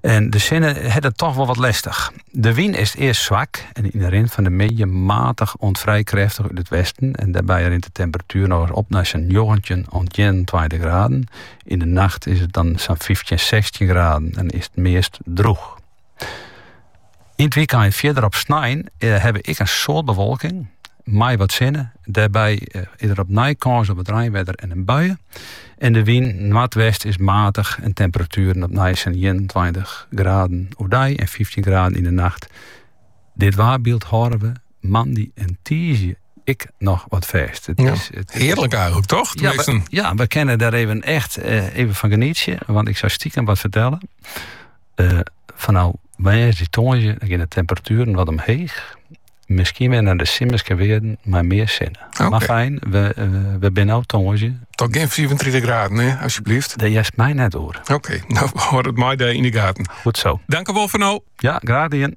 En de sinne hat it toch wol wat lestich. De wyn is earst swak en yn de rin fan de middei matich oant frij krêftich út it westen en dêrby rint de temperatuer noch ris op nei sa'n njoggentjin oant ienentweintich graden. Yn de nacht is it dan sa'n fyftjin, sechstjin graden en is it meast droech. Yn it wykein en fierder op snein eh, ha we ek in soad bewolking mei wat sinne. Dêrby eh, is der opnij kâns op wat reinwedder en in bui. En de wyn noardwest is matich en temperatueren opnij sa'n 21 graden oerdei en 15 graden yn de nacht. Dit waarbyld hâlde we moandei en tiisdei ek noch wat fêst. It is, it hearlik eigenlik, toch? Ja we, ja, we kinne dêr even echt eh, even fan genietsje. Want ik soe stikem wat fertelle. Eh, fanôf woansdei tongersdei gean de temperatueren wat omheech. Miskien wer nei de simmerske wearden, mei mear sinne. Okay. Mar fyn, we, eh, we binne no tongersdei. Toch gjin 34 graden, hè, asjebleaft? Dêr hearst my net oer. Oké, no hâld it my dêr yn de gaten. Goed sa. Dankewol foar no. Ja, graach dien.